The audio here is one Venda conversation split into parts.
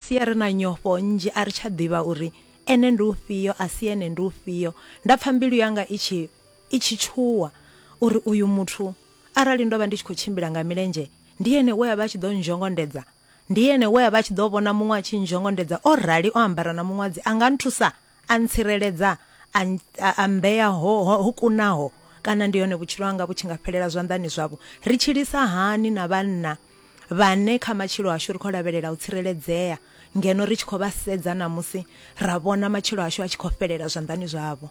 sia ri na nyofho nnzhi a ri tsha ḓivha uri Ene ndi ufhio, a si Ene ndi ufhio. Nda pfa mbilu yanga i tshi, i tshi tshuwa, uri uyu muthu, arali ndo vha ndi tshi khou tshimbila nga milenzhe, ndi ene we a vha a tshi ḓo nzhongondedza? Ndi ene we a vha a tshi ḓo vhona muṅwe a tshi nzhongondedza o rali o ambara na muṅwadzi a nga nthusa? A ntsireledza, a, a, a mmbea ho, ho, ho kunaho, kana ndi hone vhutshilo hanga vhu tshi nga fhelela zwanḓani zwavho. Ri tshilisa hani na vhanna vhane kha matshilo ashu ri khou lavhelela u tsireledzea, ngeno ri tshi khou vha sedza ṋamusi ra vhona matshilo ashu a tshi khou fhelela zwanḓani zwavho?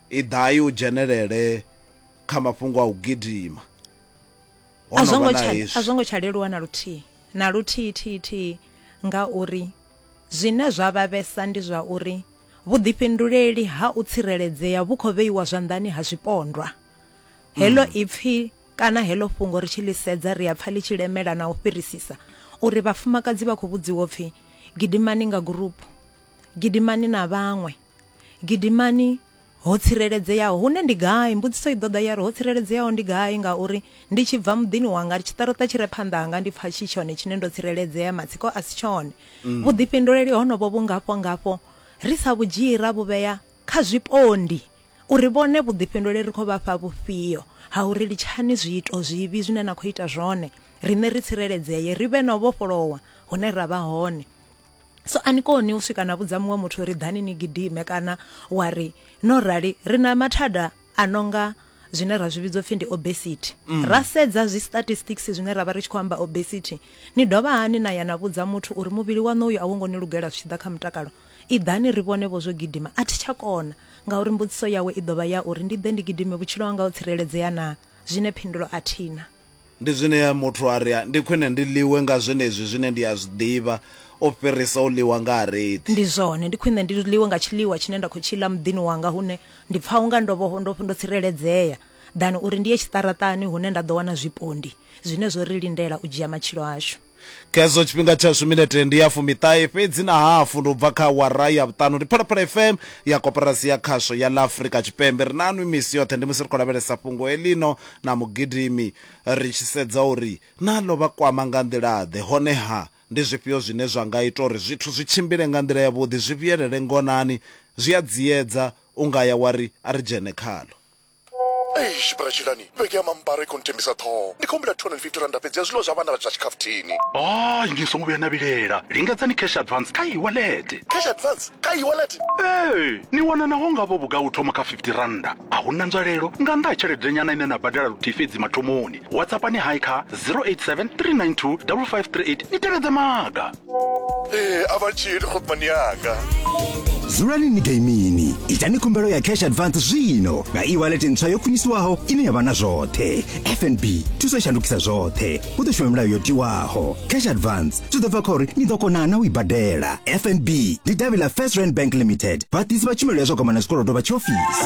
Iḓai u dzhenelele kha mafhungo a u gidima. Ho no vha na hezwi. A zwo ngo tsha leluwa na luthihi, na luthihi thihi thihi ngauri zwine zwa vhavhesa ndi zwa uri vhuḓifhinduleli ha u tsireledzea vhu khou vheiwa zwanḓani ha zwipondwa. Heḽo mm. ipfi kana heḽo fhungo ri tshi ḽi sedza ri a pfa ḽi tshi lemela na u fhirisisa uri vhafumakadzi vha khou vhudziwa upfi gidimani nga gurupu, gidimani na vhaṅwe. Gidimani ho tsireledzeaho. Hune ndi gai? Mbudziso i ḓo ḓa ya ri, Ho tsireledzeaho ndi gai? Ngauri ndi tshi bva muḓini wanga, tshiṱaroṱa tshi re phanḓa hanga ndi pfa tshi tshone tshine ndo tsireledzea, matsiko a si tshone. Mm. Vhuḓifhinduleli honovho vhu ngafho-ngafho ri sa vhu dzhii ra vhu vhea kha zwipondi uri vhone vhuḓifhinduleli ri khou vha fha vhufhio ha uri litshani zwiito zwivhi zwine na khou ita zwone, riṋe ri tsireledzee, ri vhe na u vhofholowa hune ra vha hone. so a ni koni u swika na vhudza muṅwe muthu ri ḓani ni gidime kana wa ri no rali ri na mathada a nonga zwine ra zwi vhidzwa pfhi ndi obesity mm. ra sedza zwi statistics zwine ra vha ri tshi khou amba obesity ni dovha hani na ya na vhudza muthu uri muvhili waṋu uyu a wo ngo ni lugela zwi tshi ḓa kha mutakalo i ḓani ri vhone vho zwo gidima a thi tsha kona ngauri mbudziso yawe i ḓovha ya uri ndi ḓe ndi gidime vhutshilo hanga ho tsireledzea na zwine phindulo a thina Ndi zwine muthu a ri, Ndi khwine ndi ḽiwe nga zwenezwi zwine ndi a zwi ḓivha u fhirisa u ḽiwa nga harethi. Ndi zwone, ndi khwine ndi ḽiwe nga tshiḽiwa tshine nda khou tshi ḽa muḓini wanga hune ndi pfa u nga ndo vha ndo ndo tsireledzea, ḓana uri ndi ye tshiṱaraṱani hune nda ḓo wana zwipondi zwine zwo ri lindela u dzhia matshilo ashu. Khezwo tshifhinga tshashu minete ndi ya fumiṱahe fhedzi na hafu ndi u bva kha awara ya vhuṱanu. Ndi Phalaphala FM ya Koporasi ya Khasho ya ḽa Afrika Tshipembe. Ri na nwi misi yoṱhe ndi musi ri khou lavhelesa fhungo heḽino na mugidimi ri tshi sedza uri na ḽo vha kwama nga nḓila-ḓe, hone-ha ndi zwifhio zwine zwa nga ita uri zwithu zwi tshimbile nga nḓila yavhuḓi, zwi vhuyelele ngonani. Zwi a dziedza, u nga ya wa ri a ri dzhene khaḽo. Eish bra Tshilani, vhege ya mambaro i khou nthembisa ṱhoho. Ndi khou humbela 250 rannda fhedzi ya zwiḽiwa zwa vhana zwa tshikhafuthini. Hai ni songo vhuya na vhilela, lingedzani cash advance kha e-wallet. Cash advance kha e-wallet? Ee, ni wana naho nga vho vhugai u thoma kha 50 rannda. A hu na nzwalelo nga nnḓa ha tsheledenyana ine na badela luthihi fhedzi mathomoni. WhatsAppani hai kha 087 392 5538 ni tevhedze maga. ee a vha tshili khopmani yanga dzulani ni gaimini itani khumbelo ya cash advance zwino nga e-wallet ntswa yo khwiniswaho ine ya vha na zwoṱhe fnb thuso i shandukisa zwoṱhe hu ḓo shuma milayo yo tiwaho cash advance zwi ḓo bva kha uri ni ḓo kona na u i badela fnb ndi davhi ḽa first rand bank limited vhaḓisi vha tshumelo ya zwa gwama na zwikolodo vha tshiofisi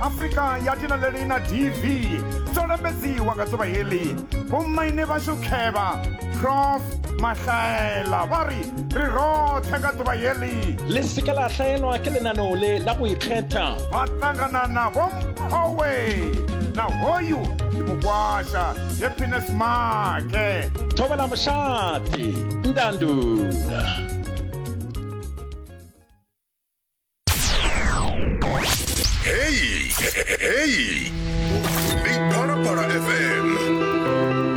afrika ya tina leli na dv dzo lambedziwa nga dzuvha heḽi vhomaine vhashu khevha prof mahlaela vha ri ri roṱhe nga dzuvha heḽi le se ke la hlaelwa ke lenaneo le la go ikgetha ba ṱangana na bomphowe na hoyu ndi mukwasha happiness make thobela mošate ndandula Hey, hey, hey. Big Para Para FM.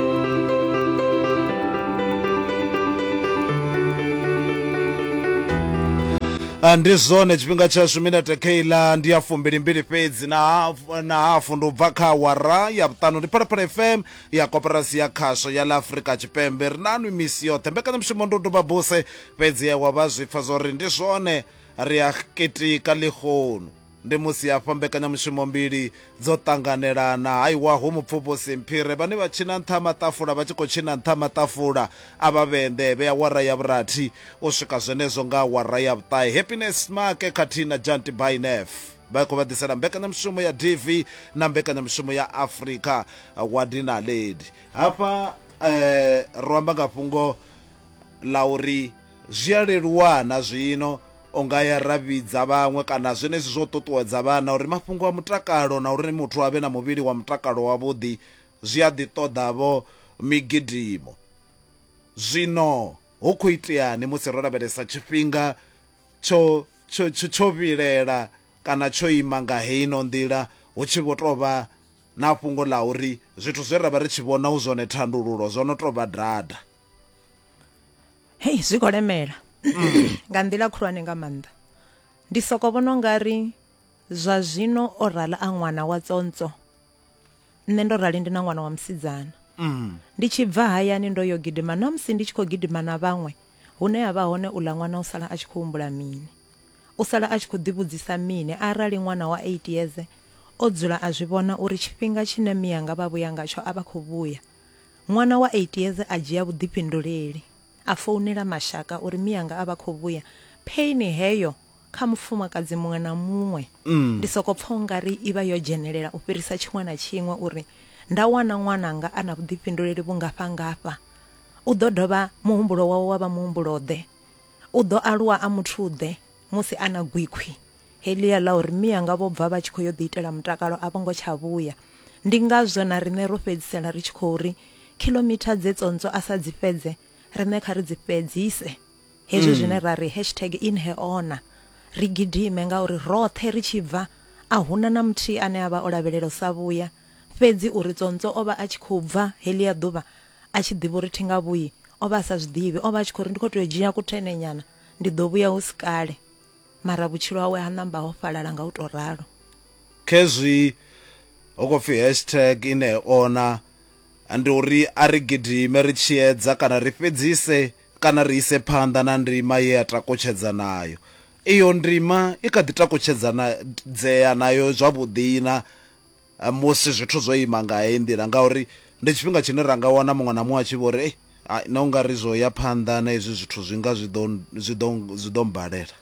Ah, ndi zwone tshifhinga tshashu minete keiḽa ndi ya fumbilimbili fhedzi na hafu- na hafu ndi u bva kha awara ya vhuṱanu ndi phalaphala fm ya koporasi ya khasho ya ḽa afrika tshipembe ri nanu misi yoṱhe mbekanyamushumo ndi u doba buse Fhedzi Ewa vha zwi pfa zwa uri ndi zwone, ri a kitika ḽihonu. Ndi musi hafha mbekanyamushumo mbili dzo ṱanganelana, ha iwa hu mupfuvhusi Mphire, vhane vha tshina nṱha ha maṱafula vha tshi khou tshina nṱha ha maṱafula a Vhavhende vhe awara ya vhurathi u swika zwenezwo nga awara ya vhuṱahe. Happiness Smake khathihi na Janty Bainef vha khou vha ḓisela mbekanyamushumo ya DV na mbekanyamushumo ya Afrika Wadi Naledi. Hafha ro amba nga fhungo ḽa uri zwi a leluwa na zwino u nga ya ra vhidza vhaṅwe kana zwenezwi zwo ṱuṱuwedza vhana uri mafhungo a mutakalo na uri muthu a vhe na muvhili wa mutakalo wavhuḓi zwi a ḓi ṱoḓa-vho migidimo. Zwino hu khou iteani musi ro lavhelesa tshifhinga tsho tsho tsho tsho vhilela kana tsho ima nga heino nḓila hu tshi vho tou vha na fhungo ḽa uri zwithu zwe ra vha ri tshi vhona hu zwone thandululo zwo no tou vha dada? hei zwi khou lemela nga nḓila khulwane nga maanḓa ndi soko vhona u nga ri zwa zwino o rala a ṅwana wa tsontswo nṋe ndo rali ndi na ṅwana wa musidzana mm. ndi tshi bva hayani ndo yo gidima na musi ndi tshi khou gidima na vhaṅwe hune ha vha hone uḽa ṅwana u sala a tshi khou humbula mini u sala a tshi khou ḓivhudzisa mini arali ṅwana wa 8 years o dzula a zwi vhona uri tshifhinga tshine miyanga vha vhuya ngatsho a vha khou vhuya Ṅwana wa 8 years a dzhia vhuḓifhinduleli, a founela mashaka uri mianga a vha khou vhuya. Pain heyo kha mufumakadzi muṅwe na muṅwe. Ndi sokou pfa u nga ri i vha yo dzhenelela u fhirisa tshiṅwe na tshiṅwe uri nda wana ṅwananga a na vhuḓifhinduleli vhungafha-ngafha. U ḓo dovha muhumbulo wawe wa vha muhumbulo-ḓe? U ḓo aluwa a muthu-ḓe musi a na gwikhwi? Heḽia ḽa uri mianga vho bva vha tshi khou yo ḓiitela mutakalo a vho ngo tsha vhuya. Ndi ngazwo na riṋe ro fhedzisela ri tshi khou ri, Khiḽomitha dze tsontswo a sa dzi fhedze, riṋe kha ri dzi fhedzise. Hezwi zwine ra ri, hashtag InHeHona. Ri gidime ngauri roṱhe ri tshi bva, a hu na na muthihi ane a vha o lavhelela u sa vhuya. Fhedzi uri tsontswo o vha a tshi khou bva heḽia ḓuvha a tshi ḓivha uri thi nga vhuyi, o vha a sa zwi ḓivhi. O vha a tshi khou ri, Ndi khou tou dzhia kuthenhenyana, ndi ḓo vhuya hu si kale. Mara vhutshilo hawe ha ṋamba ho fhalala nga u tou ralo. Khezwi ho khou pfi hashtag i ṋee ona ndi uri a ri gidime ri tshi edza kana ri fhedzise kana ri ise phanḓa na ndima ye ya takutshedza nayo. Iyo ndima i kha ḓi takutshedzana dzea nayo zwavhuḓina musi zwithu zwo ima nga heyi nḓila ngauri ndi tshifhinga tshine ra nga wana muṅwe na muṅwe a tshi vho ri, Ei, hai, nṋe u nga ri zwo ya phanḓa na hezwi zwithu zwi nga zwi ḓo, zwi ḓo, zwi ḓo mmbalela.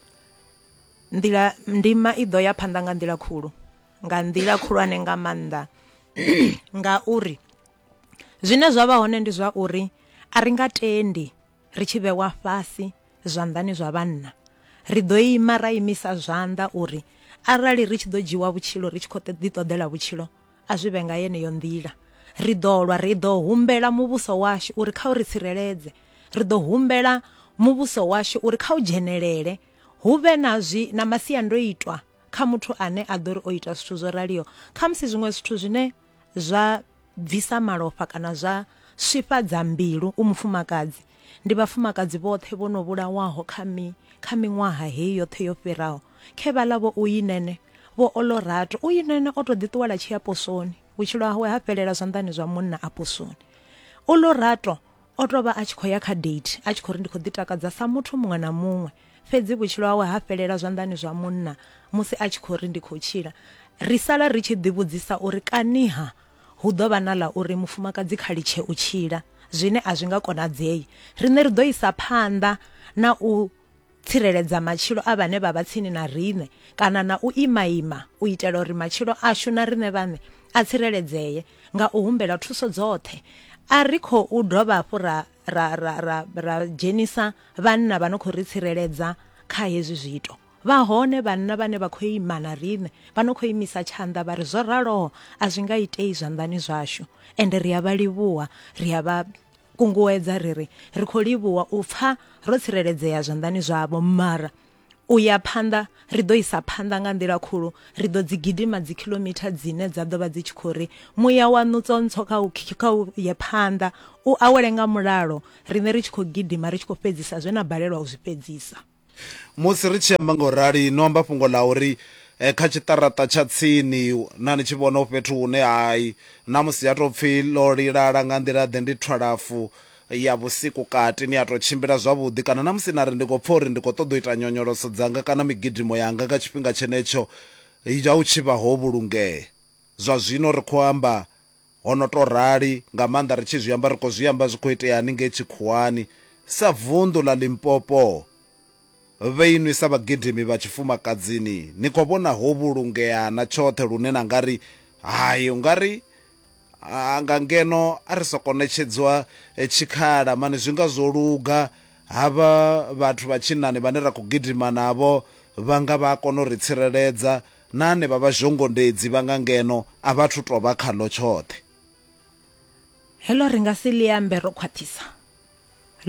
Nḓila, ndima i ḓo ya phanḓa nga nḓila khulu, nga nḓila khulwane nga maanḓa ngauri zwine zwa vha hone ndi zwa uri a ri nga tendi ri tshi vhewa fhasi zwanḓani zwa vhanna, ri ḓo ima ra imisa zwanḓa uri arali ri tshi ḓo dzhiwa vhutshilo ri tshi khou ḓi ṱoḓela vhutshilo a zwi vhe nga yeneyo nḓila. Ri ḓo lwa, ri ḓo humbela muvhuso washu uri kha u ri tsireledze, ri ḓo humbela muvhuso washu uri kha u dzhenelele hu vhe na zwi na masiandoitwa kha muthu ane a ḓo ri o ita zwithu zwo raliho, khamusi zwiṅwe zwithu zwine zwa bvisa malofha kana zwa swifhadza mbilu u mufumakadzi ndi vhafumakadzi vhoṱhe vho no vhulawaho kha mi kha miṅwaha heyi yoṱhe yo fhiraho khe vha ḽa vho uyinene vho olorato uyinene o to ḓiṱuwela tshi ya posoni vhutshilo hawe ha fhelela zwanḓani zwa munna a posoni olorato O tou vha a tshi khou ya kha date a tshi khou ri ndi khou ḓitakadza sa muthu muṅwe na muṅwe. Fhedzi vhutshilo hawe ha fhelela zwanḓani zwa munna musi a tshi khou ri ndi khou tshila. Ri sala ri tshi ḓivhudzisa uri kaniha hu ḓo vha na ḽa uri mufumakadzi kha litshe u tshila, zwine a zwi nga konadzei. Riṋe ri ḓo isa phanḓa na u. tsireledza matshilo a vhane vha vha tsini na riṋe kana na u imaima u itela uri matshilo ashu na riṋe vhaṋe a tsireledzee nga u humbela thuso dzoṱhe a ri khou dovha hafhu ra ra ra ra ra dzhenisa vhanna vha no khou ri tsireledza kha hezwi zwiito vha hone vhanna vhane vha khou ima na riṋe vha no khou imisa tshanḓa vha ri zwo raloho a zwi nga itei zwanḓani zwashu ende ri a vha livhuwa ri a vha kunguwedza ri ri ri khou livhuwa u pfa ro tsireledzea zwanḓani zwavho mara u ya phanḓa ri ḓo isa phanḓa nga nḓila khulu ri ḓo dzi gidima dzi kilomitha dzine dza ḓo vha dzi tshi khou ri muya wa nutsontsho kha u kha u ye phanḓa u awele nga mulalo riṋe ri tshi khou gidima ri tshi khou fhedzisa zwe na balelwa u zwi fhedzisa Musi ri tshi amba nga u rali, no amba fhungo ḽa uri eh, kha tshiṱaraṱa tsha tsini na ni tshi vhona fhethu hune hai na musi ya tou pfi ḽo lilala nga nḓila-ḓe ndi thwalafu ya vhusiku kati, ni a tou tshimbila zwavhuḓi kana na musi na ri ndi khou pfa uri ndi khou ṱoḓa u ita nyonyoloso dzanga kana migidimo yanga nga tshifhinga tshenetsho ya u tshi vha ho vhulungea. Zwa zwino ri khou amba Ho no tou rali, nga maanḓa ri tshi zwi amba ri khou zwi amba zwi khou itea haningei tshikhuwani. Sa vunḓu ḽa Limpopo, vhoinwi sa vhagidimi vha tshifumakadzini ni khou vhona ho vhulungea na tshoṱhe lune na nga ri, Hai, u nga ri nga ngeno a ri sokou ṋetshedzwa tshikhala mani zwi nga zwo luga. Havha vhathu vha tshinnani vhane ra khou gidima navho vha nga vha a kona u ri tsireledza Na hanevha vhazhongondedzi vha nga ngeno a vha athu tou vha khaḽo tshoṱhe. Heḽo ri nga si ḽi ambe ro khwaṱhisa.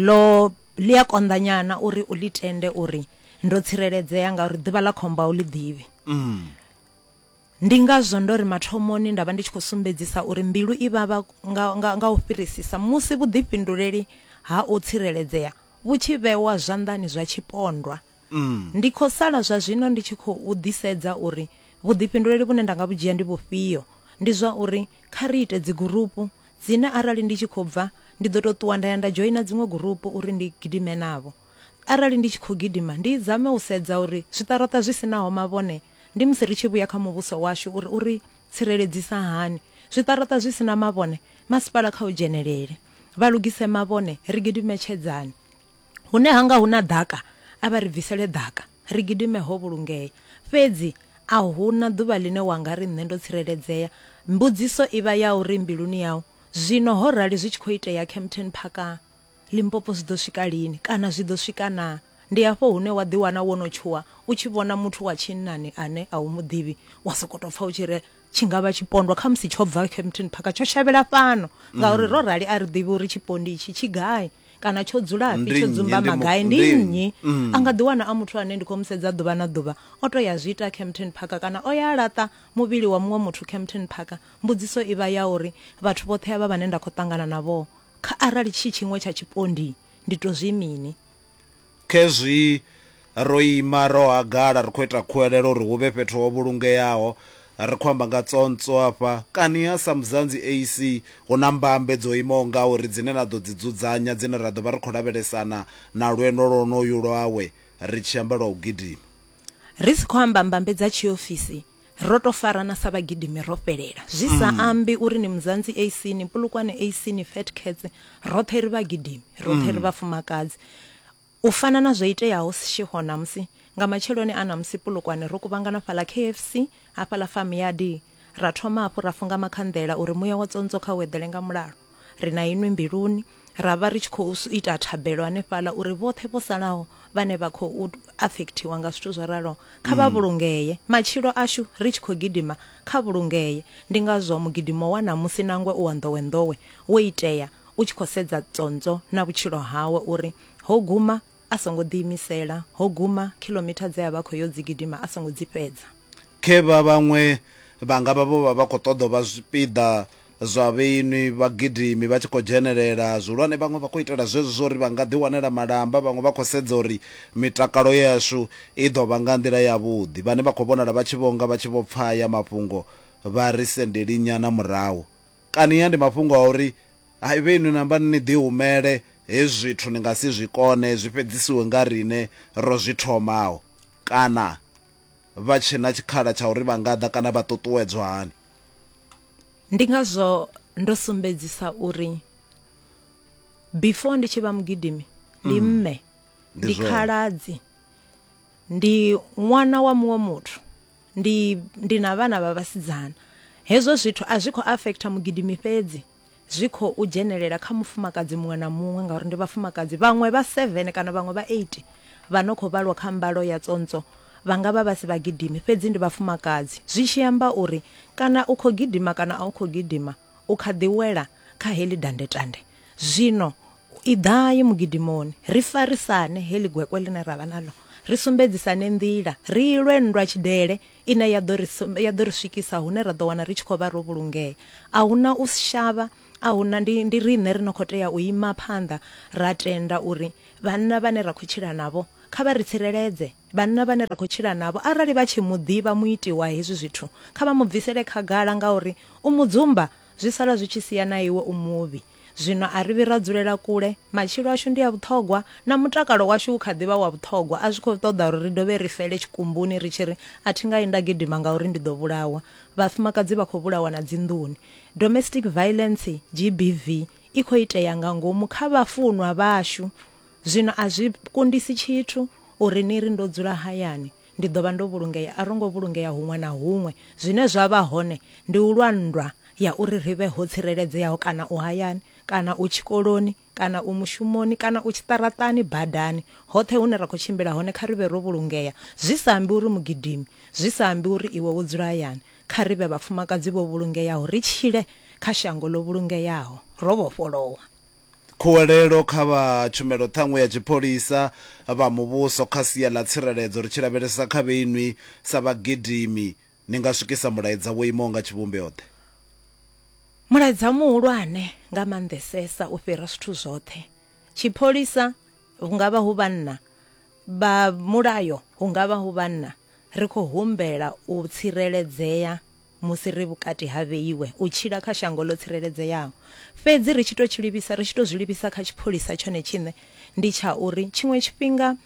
Ḽo, ḽi a konḓanyana uri u ḽi tende uri ndo tsireledzea ngauri ḓuvha ḽa khombo a u ḽi ḓivhi. Ndi ngazwo ndo ri mathomoni nda vha ndi tshi khou sumbedzisa uri mbilu i vhavha nga, nga, nga u fhirisisa musi vhuḓifhinduleli ha u tsireledzea vhu tshi vhewa zwanḓani zwa tshipondwa. Ndi khou sala zwa zwino ndi tshi khou ḓisedza uri vhuḓifhinduleli vhune nda nga vhu dzhia ndi vhufhio. Ndi zwa uri kha ri ite dzigurupu, dzine arali ndi tshi khou bva ndi ḓo tou ṱuwa nda ya nda dzhoina dziṅwe gurupu uri ndi gidime navho. Arali ndi tshi khou gidima, ndi zame u sedza uri zwiṱaraṱa zwi si naho mavhone ndi musi ri tshi vhuya kha muvhuso washu uri u ri tsireledzisa hani. Zwiṱaraṱa zwi si na mavhone, masipala kha u dzhenelele vha lugise mavhone, ri gidime tshedzani. Hune ha nga hu na ḓaka, a vha ri bvisele ḓaka, ri gidime ho vhulungea. Fhedzi a hu na ḓuvha ḽine wa nga ri nṋe ndo tsireledzea. Mbudziso i vha ya uri mbiluni yau, Zwino ho rali zwi tshi khou itea Kempton Park, Limpopo zwi ḓo swika lini, kana zwi ḓo swika naa? Ndi hafho hune wa ḓiwana wo no tshuwa u tshi vhona muthu wa tshinnani ane a u mu ḓivhi, wa sokou tou pfa u tshi ri, tshi nga vha tshipondwa kha musi tsho bva Kempton Park tsho shavhela fhano ngauri ro rali a ri ḓivhi uri tshipondi itshi tshi gai kana tsho dzulafhi Ndi tsho nnyi, dzumba ndi mu- magai ndi ndi nnyi nnyi a nga ḓi wana a muthu ane ndi khou mu sedza ḓuvha na ḓuvha o to ya zwi ita Kempton Park kana o ya a laṱa muvhili wa muṅwe muthu Kempton Park mbudziso i vha ya uri vhathu vhoṱhe avha vhane nda khou ṱangana navho kha arali tshi tshiṅwe tsha tshipondi ndi to zwi mini Khezwi ro ima ro hagala ri khou ita khuwelelo uri hu vhe fhethu ho vhulungeaho, ri khou amba nga tsontswo afha. Kani ha Samuzanzi AC hu na mbambe dzo imaho ngauri dzine na ḓo dzi dzudzanya dzine ra ḓo vha ri khou lavhelesana na lwendo lwonolwu lwawe ri tshi amba lwa u gidima? Ri si khou amba mbambe dza tshiofisi, Ro tou farana sa vhagidimi ro fhelela. Zwi sa ambi uri ni Muzanzi AC, ni Polokwane AC, ni Fat Cats, roṱhe ri vhagidimi, roṱhe ri vhafumakadzi. U fana na zwo iteaho Seshego ṋamusi, nga matsheloni a ṋamusi Polokwane ro kuvhangana fhaḽa KFC, hafhaḽa Farmyard, ra thoma hafhu ra funga makhanḓela uri muya wa tsontswo kha u eḓele nga mulalo. Ri na inwi mbiluni, ra vha ri tshi khou ita thabelo hanefhaḽa uri vhoṱhe vho salaho vhane vha khou afekthiwa nga zwithu zwo raloho kha vha vhulungee, matshilo ashu ri tshi khou gidima kha vhulungee. Ndi ngazwo mugidimo wa ṋamusi nangwe u wa nḓowenḓowe wo itea u tshi khou sedza Tsontswo na vhutshilo hawe uri ho guma A songo ḓiimisela, ho guma, khiḽomitha dze a vha a khou yo dzi gidima a songo dzi fhedza. Khe vha vhaṅwe vha nga vha vho vha vha khou ṱoḓa u vha zwipiḓa zwa vhainwi, vhagidimi vha tshi khou dzhenelela zwihulwane. Vhaṅwe vha khou itela zwezwo zwa uri vha nga ḓiwanela malamba. Vhaṅwe vha khou sedza uri mitakalo yashu i ḓo vha nga nḓila yavhuḓi. Vhane vha khou vhonala vha tshi vho nga vha tshi vho pfa haya mafhungo vha ri sendelinyana murahu Kania ndi mafhungo a uri haivhe inwi na amba ni ḓihumele, hezwi zwithu ni nga si zwi kone, zwi fhedzisiwe nga riṋe ro zwi thomaho? Kana vha tshe na tshikhala tsha uri vha nga ḓa kana vha ṱuṱuwedzwa hani? Ndi ngazwo ndo sumbedzisa uri before ndi tshi vha mugidimi, ndi mme, ndi khaladzi, ndi ṅwana wa muṅwe muthu. ndi ndi na vhana vha vhasidzana hezwo zwithu a zwi khou afektha mugidimi fhedzi zwi khou dzhenelela kha mufumakadzi muṅwe na muṅwe ngauri ndi vhafumakadzi vhaṅwe vha 7 kana vhaṅwe vha 8 vha no khou vhalwa kha mbalo ya tsontswo vha nga vha vha si vhagidimi fhedzi ndi vhafumakadzi zwi tshi amba uri kana u khou gidima kana a u khou gidima u kha ḓi wela kha heḽi dandetande. Zwino iḓai mugidimoni, ri farisane heḽi gwekwe ḽine ra vha naḽo, ri sumbedzisane nḓila, ri i lwe nndwa tshidele ine ya ḓo ri ya ḓo ri swikisa hune ra ḓo wana ri tshi khou vha ro vhulungea. A hu na u shavha, a hu na, ndi, ndi riṋe ri no khou tea u ima phanḓa ra tenda uri vhanna vhane ra khou tshila navho kha vha ri tsireledze. Vhanna vhane ra khou tshila navho arali vha tshi mu ḓivha muiti wa hezwi zwithu, kha vha mu bvisele khagala ngauri u mu dzumba zwi sala zwi tshi sia na iwe u muvhi. Zwino a ri vhi ra dzulela kule, matshilo ashu ndi a vhuṱhogwa, na mutakalo washu u kha ḓi vha wa vhuṱhogwa, a zwi khou ṱoḓa uri ri dovhe ri fele tshikumbuni ri tshi ri, A thi nga yi nda gidima ngauri ndi ḓo vhulawa. Vhafumakadzi vha khou vhulawa na dzinḓuni. Domestic Violence, GBV, i khou itea nga ngomu kha vhafunwa vhashu. Zwino a zwi kundisi tshithu uri ni ri, Ndo dzula hayani, ndi ḓo vha ndo vhulungea. A ro ngo vhulungea huṅwe na huṅwe. Zwine zwa vha hone ndi u lwa nndwa ya uri ri vhe ho tsireledzeaho, kana u hayani, kana u tshikoloni, kana u mushumoni, kana u tshiṱaraṱani, badani, hoṱhe hune ra khou tshimbila hone, kha ri vhe ro vhulungea. Zwi sa ambi uri mugidimi, zwi sa ambi uri iwe wo dzula hayani, kha ri vhe vhafumakadzi vho vhulungeaho, ri tshile kha shango ḽo vhulungeaho, ro vhofholowa. Khuwelelo kha vha tshumelo ṱhanngwe ya tshipholisa, vha muvhuso kha sia ḽa tsireledzo ri tshi lavhelesa kha vhe inwi sa vhagidimi ni nga swikisa mulaedza wo imaho nga tshivhumbeo-ḓe? Mulaedza muhulwane nga maanḓesesa u fhira zwithu zwoṱhe tshipholisa, hu nga vha hu vhanna vha mulayo, hu nga vha hu vhanna, ri khou humbela u tsireledzea musi ri vhukati ha vheiwe u tshila kha shango ḽo tsireledzeaho. Fhedzi ri tshi tou tshi livhisa, ri tshi tou zwi livhisa kha tshipholisa tshone tshiṋe, ndi tsha uri tshiṅwe tshifhinga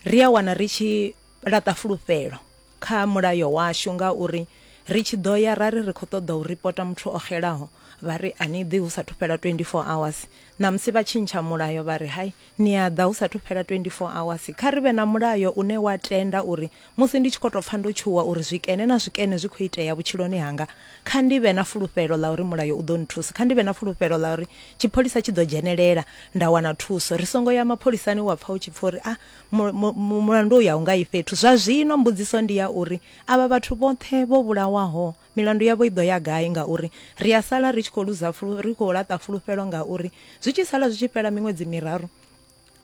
ri a wana ri tshi laṱa fulufhelo kha mulayo washu ngauri ri tshi ḓo ya ra ri ri khou ṱoḓa u ripota muthu o xelaho vha ri a ni ḓi hu sathu fhela 24 hours, ṋamusi vha tshintsha mulayo vha ri hai, Ni a ḓa hu sathu fhela 24 awasi. Kha ri vhe na mulayo une wa tenda uri musi ndi tshi khou tou pfa ndo tshuwa uri zwikene na zwikene zwi khou itea vhutshiloni hanga, kha ndi vhe na fulufhelo ḽa uri mulayo u ḓo nthusa. Kha ndi vhe na fulufhelo ḽa uri tshipholisa tshi ḓo dzhenelela nda wana thuso. Ri songo ya mapholisani wa pfa u tshi pfa uri, A, mu, mu, mu, mulandu uyu a u nga yi fhethu. Zwa zwino mbudziso ndi ya uri, Avha vhathu vhoṱhe vho vhulawaho Milandu yavho i ḓo ya gai? Ngauri ri a sala ri tshi khou luza fulu, ri khou laṱa fulufhelo ngauri zwi tshi sala zwi tshi fhela miṅwedzi miraru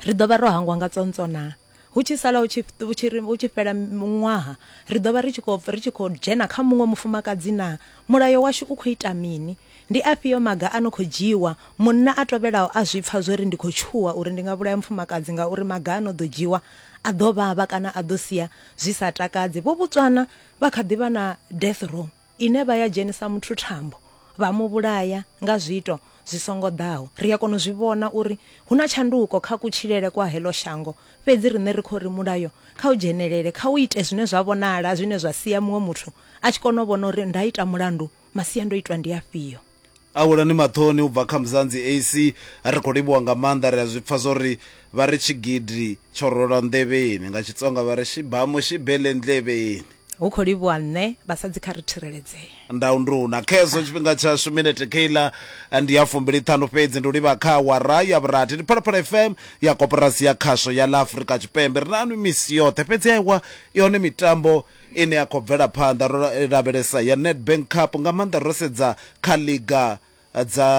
ri ḓo vha ro hangwa nga tsontswo naa? Hu tshi sala hu tshi, hu tshi, hu tshi fhela ṅwaha ri ḓo vha ri tshi khou, ri tshi khou dzhena kha muṅwe mufumakadzi naa? Mulayo washu u khou ita mini? Ndi afhio maga a no khou dzhiiwa? Munna a tovhelaho a zwi pfa zwo ri ndi khou tshuwa uri ndi nga vhulaya mufumakadzi ngauri maga a no ḓo dzhiiwa a ḓo vhavha kana a ḓo sia zwi sa takadzi. Vho vhudzwa na Vha kha ḓi vha na death row ine vha ya dzhenisa muthu thambo vha mu vhulaya nga zwiito zwi songo ḓaho. Ri a kona u zwi vhona uri hu na tshanduko kha kutshilele kwa heḽo shango, fhedzi riṋe ri khou ri mulayo kha u dzhenelele, kha u ite zwine zwa vhonala zwine zwa sia muṅwe muthu a tshi kona u vhona uri nda ita mulandu masiandoitwa ndi afhio. A welani maṱoni u bva kha Mzanzi AC. Ri khou livhuwa nga maanḓa, ri a zwi pfa zwo ri, vha ri tshigidi tsho rwelwa nḓevheni. Nga Xitsonga vha ri xibamu xi bele ndleveni. Hu khou livhuwa nṋe, vhasadzi kha ri thireledzee. Ndau nduna. Khezwo tshifhinga tshashu minete kheiḽa ndi ya fumbiliṱhanu fhedzi, ndi u livha kha awara ya vhurathi. Ndi Phalaphala FM ya Koporasi ya Khasho ya ḽa Afrika Tshipembe. Ri na nwi misi yoṱhe, fhedzi aiwa, i hone mitambo. ine ya khou bvela phanḓa ro lavhelesa ya Nedbank Cup nga maanḓa ro sedza kha liga dza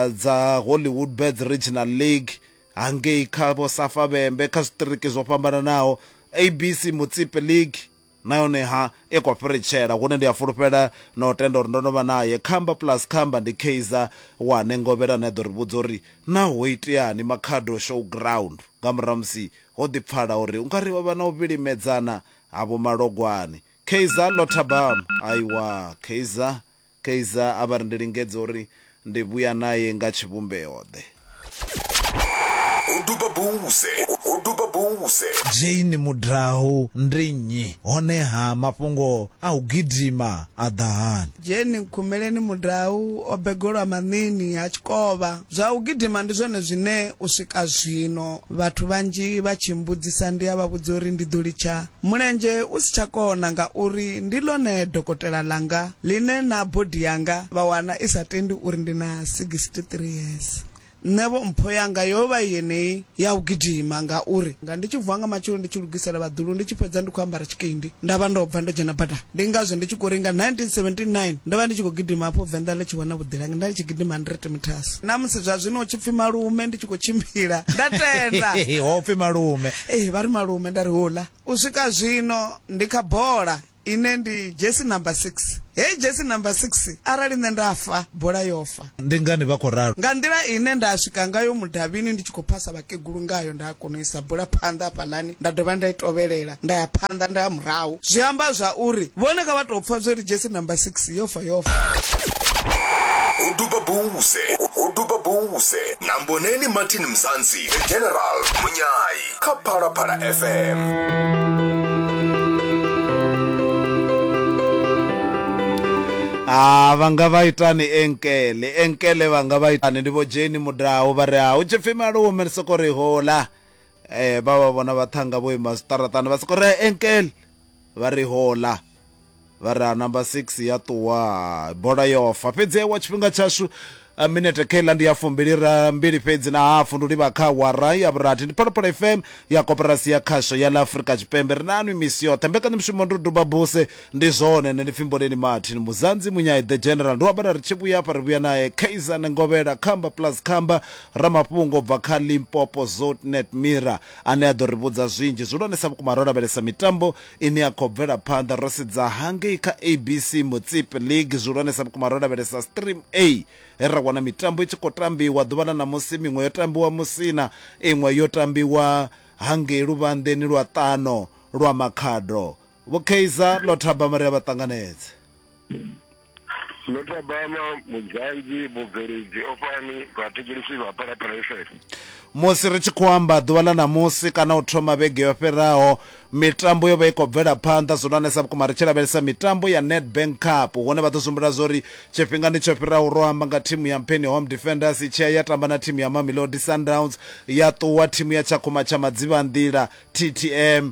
dza Hollywood Bets Regional League hangei kha vho Safa Vhembe kha zwiṱiriki zwo fhambananaho ABC Mutsipe League na yone ha i khou fhiritshela hune ndi a fulufhela na u tenda uri ndo no vha naye khamba plus khamba ndi kaizer wane ngovhela ane a ḓo ri vhudza uri na ho iteani makhado show ground nga murahu musi Ho ḓi pfala uri u nga ri ho vha na u vhilimedzana ha Vho Malogwane. Keizer, Lothabam, Aiwa, Keizer, Keizer a vha ri ndi lingedze uri ndi vhuya nae nga tshivhumbeo-ḓe. Ho duba buze, ho duba buze. Jane Mudau, Ndi nnyi? Honeha mafhungo a u gidima a ḓa hani? Jane Nkhumeleni Mudau o begolwa maṋini ha Tshikovha. Zwa u gidima ndi zwone zwine u swika zwino vhathu vhanzhi vha tshi mmbudzisa ndi a vha vhudza uri ndi ḓo litsha mulenzhe u si tsha kona ngauri ndi ḽone dokotela ḽanga ḽine na body yanga vha wana i sa tendi uri ndi na 63 years. Nṋevho mpho yanga yo vha i yeneyi ya u gidima ngauri nga ndi tshi vuwa nga matsheloni ndi tshi lugisela vhaḓulu ndi tshi fhedza ndi khou ambara tshikendi nda vha ndo bva ndo dzhena badani. Ndi ngazwo ndi tshi khou ri nga 1979 ndo vha ndi tshi khou gidima hafho Venḓa ḽi tshi wana vhuḓilangi nda ndi tshi gidima 100 meters. Na musi zwa zwino hu tshi pfi malume ndi tshi khou tshimbila nda tenda. Ho pfi malume. Ee vha ri malume nda ri houḽa. U swika zwino ndi kha bola ine ndi jersey number 6. Heyi jersey number 6 arali nṋe nda fa bola yo fa. Ndi ngani vha khou ralo? Nga nḓila ine nda swika ngayo mudavhini ndi tshi khou phasa vhakegulu ngayo, nda kona u isa bula phanḓa hafhaḽani nda dovha nda i tovhelela nda ya phanḓa nda ya murahu. Zwi amba zwa uri vhone kha vha tou pfa zwo ri dzhesi number six yo fa yo fa. Ho duba Bouse, ho duba Bouse na Mboneni Martin Mzansi, The General, Munyai. kha phalaphala fm ha ah, vha nga vha itani enkele enkele vha nga vha itani ndi vho jeni mudaho vha ri ha ah, u tshi pfhi malo womele soko ri hola um eh, vha vha vhona vhaṱhanga vho ima zwiṱaraṱani vha soko ri enkele vha ri hola vha ri ha number 6 ya ṱuwa bola yo fa fhedzi wa tshifhinga tshashu eh, minete kha iḽa ndi ya fumbili ra mbili fhedzi na hafu ndi livha kha wara ya vhurathi ndi phalaphala fm ya koporasi ya khasho ya ḽa afurika tshipembe ri na anwi misi yoṱhe mbekanyamushumo ndo duba buse ndi zwone nṋe ndi pfhi mboleni martin muzanzi munyai the general ndi wabala ri tshi vhuya afha ri vhuya naye kaisan ngovhela khamba plus khamba ramafhungo bva kha limpopo zotnet mira ane a ḓo ri vhudza zwinzhi zwihulwanesa vhukuma ro lavhelesa mitambo ine ya khou bvela phanḓa ro sedza hangei kha ABC Motsepe League zwihulwanesa vhukuma ro lavhelesa Stream A he ra wana mitambo i tshi khou tambiwa ḓuvha ḽa ṋamusi miṅwe yo tambiwa Musina iṅwe yo tambiwa hangei luvhanḓeni lwa ṱano lwa Makhado Vho Kaizer ḽo thabama ri a vha ṱanganedze. musi ri tshi khou amba ḓuvha ḽa ṋamusi kana u thoma vhege yo fhiraho mitambo yo vha i khou bvela phanḓa zwihulwanesa vhukuma ri tshi lavhelesa mitambo ya nedbank cup hune vha ḓo sumbula zwa uri tshifhingani tsho fhiraho ro amba nga thimu ya mpheni home defenders i tshiya ya tamba na thimu ya mamelodi sundowns ya ṱuwa thimu ya tshakhuma tsha madzivhanḓila ttm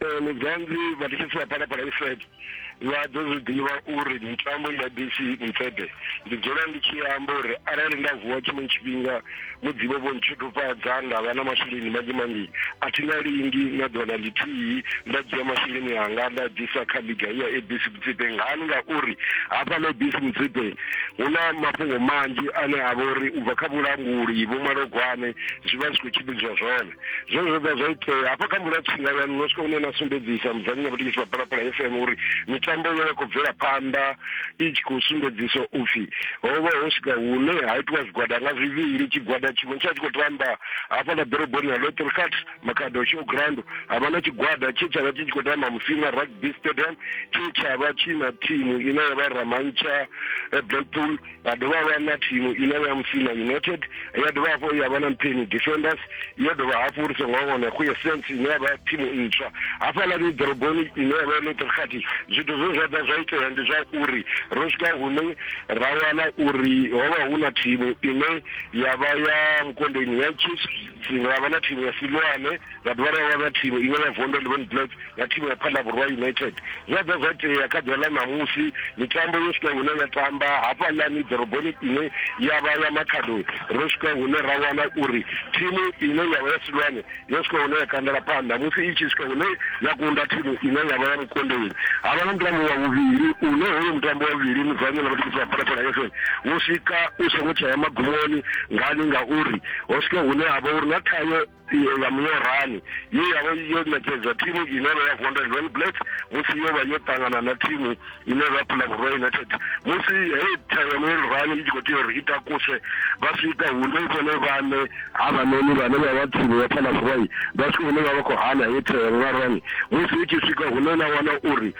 eh, muzanzi vhatishisi ya phalaphala ifede vha ḓo zwi ḓivha uri mitambo ya dc mfede ndi dzula ndi tshi amba uri arali nda vuwa tshiṅwe tshifhinga mudzibo vho ntshutufhadza nda vha na masheleni manzhi manzhi a thi na lingi na ḓola ḽithihi nda dzhia masheleni anga nda ḓisa kha liga ya abc mutsipe ngani ngauri hafha na abc mutsipe hu na mafhungo manzhi ane a vha uri u bva kha vhulanguli vho malogwane zwi vha zwi khou tshimbidzwa zwone zwe zwo vha zwa itea hafha kha mvula tsinga ya nṋe swika une na sumbedzisa mudzudzanyi na vhutikisi wa palapala f m uri mitambo yo ya khou bvela phanḓa i tshi khou sumbedzisa upfhi ho vha ho swika hune ha itiwa zwigwada nga zwivhili tshigwada tshiṅwe tsha tshi khou tamba hafha na ḓoroboni ya lotrcat makhado showground ha vha na tshigwada tshe tsha vha tshi tshi khou tamba musina rugby stadium tshe tsha vha tshi na thimu ine ya vha ramantsha eh, blackpool vha dovha vha na thimu ine ya musina united ya dovha hafho ya vha na mpeni defenders ya dovha hafho uri songo wana khu essence ine ya vha thimu ntswa hafhaḽa ni ḓoroboni ine ya vha neutral khathi zwithu zwe zwa ḓa zwa itea ndi zwa uri ro swika hune ra wana uri ho vha hu na thimu ine ya vha ya vhukondeni ya chiefs ra vha na thimu ya silwane Vha dovha vha ya vha thivha iṅwe ya Vondwe Levin Black ya thimu ya Phala Vhurwa United. Zwi a ḓa zwa tea kha ḓuvha ḽa ṋamusi mitambo yo swika hune ya tamba hafhaḽani ḓoroboni ine ya vha ya Makhado, ro swika hune ra wana uri thimu ine ya vha ya Silwane yo swika hune ya kandela phanḓa musi i tshi swika hune ya kunda thimu ine ya vha ya Mukondoni. Ha vha na mutambo wa vhuvhili une hoyo mutambo wa vhuvhili Muzanyo na vhatikedzeli vha Phalaphala FM wo swika u songo tsha ya magumoni ngani ngauri ho swika hune ha vha uri na thayo ya muyorani ye ya vha yo ṋekedza thimu ine vha ya vondel well black musi yo vha yo ṱangana na thimu ine vha phula vhurwa united musi hei thero ya muyorani i tshi khou tea uri i takuse vha swika hune vhone vhane havhanoni vhane vha vha thimu ya phula vhurwai vha swika hune vha vha khou hana hei thero ya muyorani musi i tshi swika hune na wana uri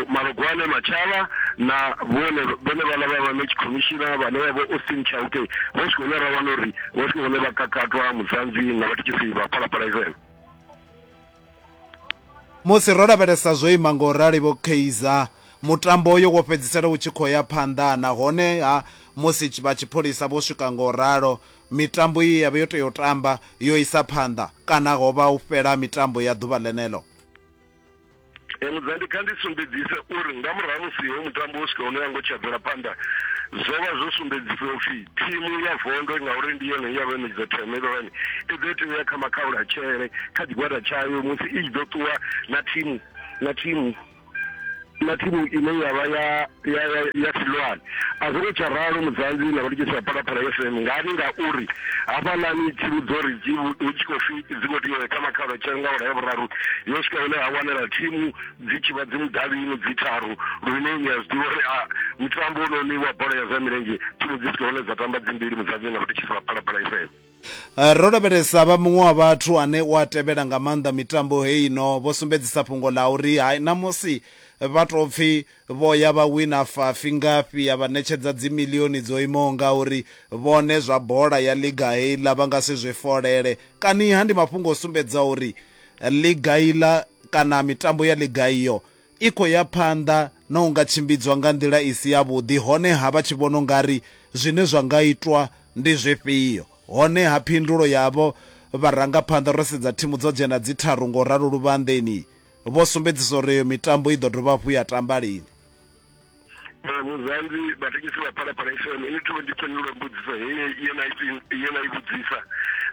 malugwane matshava na vhone vhone vhala vha vha match commissioner vhane vha vho austin chauke vha swika hune ra wana uri Hosi hune vha kakatwa mudzanzi na vhathitshisi vha phalaphala Israele. Musi ro lavhelesa zwo ima ngo rali vho Kaizer, mutambo uyo wo fhedzisela u tshi khou ya phanḓa nahone ha musi vha tshipholisa vho swika ngo ralo mitambo ye ya vha yo tea u tamba yo isa phanḓa kana ho vha u fhela mitambo ya ḓuvha ḽeneḽo. mudzandi kha ndi sumbedzise uri nga murahu musi ho mutambo wo swika hune ya ngo tshadzela phanḓa zwo vha zwo sumbedzisa upfi thimu ya vondo ngauri ndi yone ya vhenedza themelorani i ḓo tea uya kha makhaula tshele kha tshigwada tshayo musi i tshi ḓo ṱuwa na thimu na thimu na thimu ine ya vha ya ya ya, ya silwane a zwo ngo tsha ralo mudzanzi na vhalikisi vha phalaphala fm ngani ngauri hafhaḽani thimu dzo ri dzi vhu- hu tshi khou pfi dzi khou tea u ya kha makhalo tshele nga ola ya vhuraru yo swika hune ha wanala thimu dzi tshi vha dzi mudavhini dzi tharu lune ni a zwi ḓivha uri a mutambo wononi wa bola ya zwa milenzhe thimu dzi swika hune dza tamba dzi mbili mudzanzi na vhalikisi vha phalaphala fm Ro lavhelesa vha muṅwe wa vhathu ane u a tevhela nga maanḓa mitambo heino vho sumbedzisa fhungo ḽa uri hai ṋamusi vha tou pfi vho ya vha wina fafi ngafhi ya vha ṋetshedza dzimilioni dzo imaho ngauri, vhone zwa bola ya ḽiga heiḽa vha nga si zwi folele. Kaniha ndi mafhungo o sumbedzisaho uri ḽiga iḽa kana mitambo ya ḽiga iyo i khou ya phanḓa na u nga tshimbidzwa nga nḓila i si yavhuḓi, honeha vha tshi vhona u nga ri zwine zwa nga itwa ndi zwifhio. Honeha phindulo yavho vharangaphanḓa, ro sedza thimu dzo dzhena dzi tharu nga u ralo luvhanḓeni, vho sumbedzisa uri eyo mitambo i ḓo dovha hafhu ya tamba lini. muzanzi vatengesi va phalaphala fm ini to ndi fhindula mbudziso heyi ye na i vhudzisa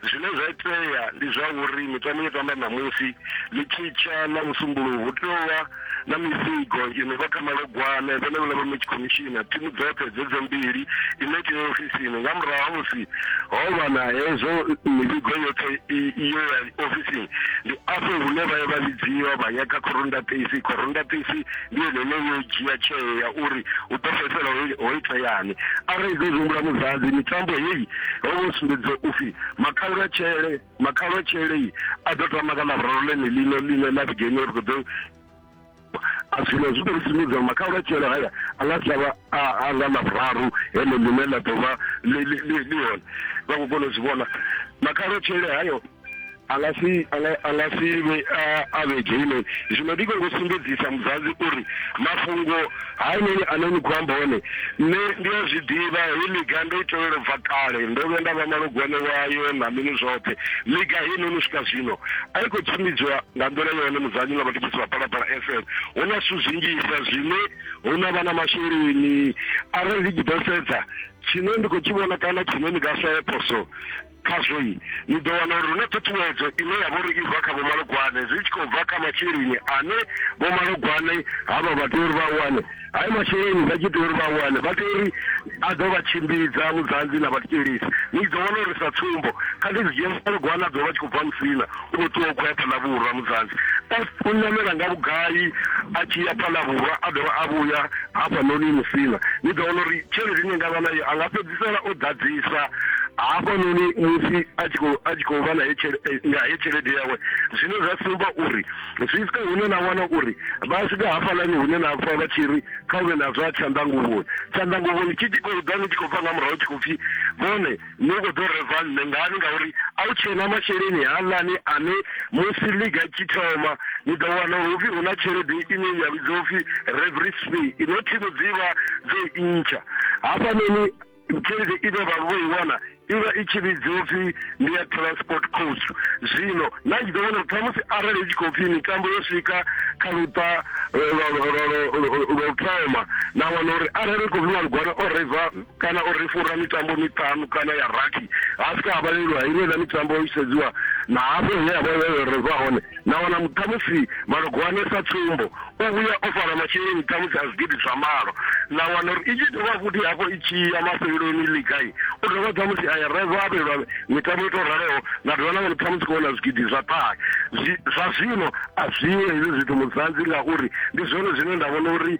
zwine zwa itea ndi zwa uri mitambo yo tamba ṋamusi ḽi tshitsha na musumbuluwo hu tovha na mifigo i no vha kha malogwane vhone vhula vha match commissioner thimu dzoṱhe dzedzo mbili i no tea ofisini nga murahu ha musi ho vha na hezwo mifigo yoṱhe iyo ya ofisini ndi afho hune vha ya vha vhidziwa vha ya kha corunda taxi corunda taxi ndi ene ene yo dzhia tsheo ya uri u ḓo fhedzisela ho iteani arali ḓo humbula muzadzi mitambo heyi ho vho sumbedza u pfi makhalwa tshele makhalwa tshele a ḓo tama ka lavhuraru ḽene ḽino ḽine ḽa vhigeni ri khou ḓo a zwino zwi tou sumbedza makhalwa tshele haya a nga si avha a nga lavhuraru heḽo ḽine ḽa ḓo vha ḽi hone vha khou kona u zwi vhona makhalwa tshele hayo a nga si a nga a nga si vhe a- a vhe dzheni zwino ndi khou sumbedzisa muzadzi uri mafhungo hainoni ane ni khou amba one nṋe ndi a zwi ḓivha heyi miga ndo i tevhela u bva kale ndo vhuya nda vha malugwane wayo na mini zwoṱhe miga heinoni u swika zwino a i khou tshimbidzwa nga nḓila yone muzanyi na vhatshisi vha phalaphala fm hu na zwithu zwinzhisa zwine hu na vha na masheleni arali ndi tshi ḓo sedza tshine ndi khou tshi vhona kana tshine ni nga sa ye phoso Khazwo-i, ni ḓo wana uri hu na ṱhuṱhuwedzo ine ya vha uri i bva kha vhomalugwane, zwi tshi khou bva kha masheleni ane vhomalugwane havha vha tea uri vha a wane. Hayo masheleni vha tshi tea uri vha a wane, vha tea uri a ḓo vha tshimbidza vhudzanzi na vhathetshelesi. Ni ḓo wana uri sa tsumbo, kha ndi zwi dzhie vhomalugwane a ḓo vha a tshi khou bva Musina, o tea u khou ya phanḓa vhura mudzanzi u ṋamela nga vhugai a tshi ya phanḓa vhura a dovha a vhuya hafhanoni musina ni ḓo wana uri tshelede ine nga vha nayo a nga fhedzisela o ḓadzisa hafhanoni musi a tshi khou a tshi khou vha na he eh, tshelede yawe zwine zwa sumba uri zwi swika hune na wana uri vha swika hafhalani hune na pfa vha tshi ri kha u vhe na zwa tshanḓanguvhoni tshanḓanguvhoni tshi tshi khou ḓa ni tshi khou bva nga murahu tshi khou pfhi vhone ni khou ḓo reva nṋe ngani ngauri a u tshena masheleni haaḽani ane musi liga tshi thoma ni ḓo wana uri upfi hu na tshelede ine ya vhidzwa upfi revery fee ino thimu dzi vha dzo i ntsha hafhanoni tshelede ine vha vho i wana i vha i tshi vhidzwa upfi ndi ya transport cost zwino na tshi ḓo vhona khamusi arali i tshi khou pfi mitambo yo swika kha luṱa lwa u thoma na wana uri arali ri khou vhiwa lugwana o reva kana o ri fhura mitambo miṱanu kana ya rathi ha swika ha vhalelwa iṅwe na mitambo i sedziwa na hafho hune ya vha yo reva hone na wana ṱhamusi malogwane sa tsumbo u vhuya o fara masheleni ṱhamusi a zwigidi zwa malo na wana uri i tshi dovha futhi hafho i tshi ya mafheleloni ligai u dovha ṱhamusi a ya reva a vhelwa mitambo i to raloho na dovha na wana ṱhamusi khou wana zwigidi zwa ṱahe zwa zwino a zwiho hezwi zwithu muzanzi ngauri ndi zwone zwine nda vhona uri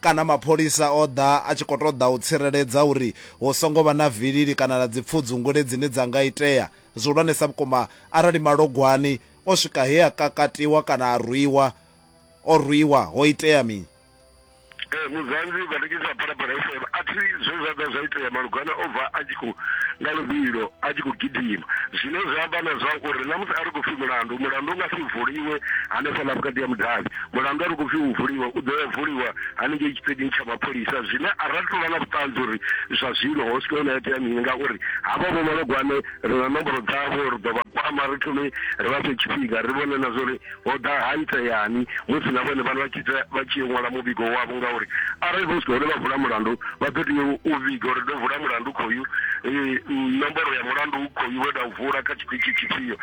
kana mapholisa o ḓa a tshi khou ṱoḓa u tsireledza uri hu songo vha na vilili kana na dzipfudzungule dzine dza nga itea. Zwihulwanesa vhukuma, arali Malogwani o swika he a kakatiwa kana a rwiwa, o rwiwa, ho itea mini? Ee, Muzanzi, Vhanekedzi vha Phalaphala FM, a thi zwe zwa ḓa zwa itea. Malogwani o bva a tshi khou nga luvhilo, a tshi khou gidima. Zwine zwa amba na zwa uri na musi a ri khou pfi mulandu, mulandu u nga si vuliwe hanefhaḽa vhukati ha mudavhi. Mulandu a ri khou pfi u vuliwa u ḓo ya vuliwa haningei tshiṱedini tsha mapholisa zwine a ri tou vha na vhuṱanzi uri zwa zwino ho swika hune ha itea mini ngauri havha vho malogwane ri na nomboro dzavho ri ḓo vha kwama ri thome ri vha fhe tshifhinga ri vhone na zwori ho ḓa ha iteani musi na vhone vhana vha tshi vha tshi yo ṅwala muvhigo wavho ngauri arali vho swika hune vha vula mulandu vha ḓo tea u vhiga uri ndo vula mulandu khoyu nomboro ya mulandu khoyu we nda u vula kha tshithu tshifhio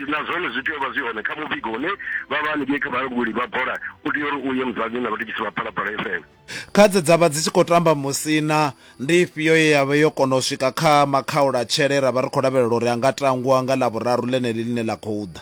na zwone zwi tea u vha zwi hone kha muvhigo une vha vha haningei kha vhalanguli vha bola u tea uri u ye mudzanyini na vhatshitshisi vha phalaphala fm kha dze dza vha dzi tshi khou tamba musina ndi ifhio ye ya vha yo kona u swika kha makhaulatshele ra vha ri khou lavhelela uri a nga tangwa nga ḽavhuraru ḽeneḽi ḽine ḽa khou ḓa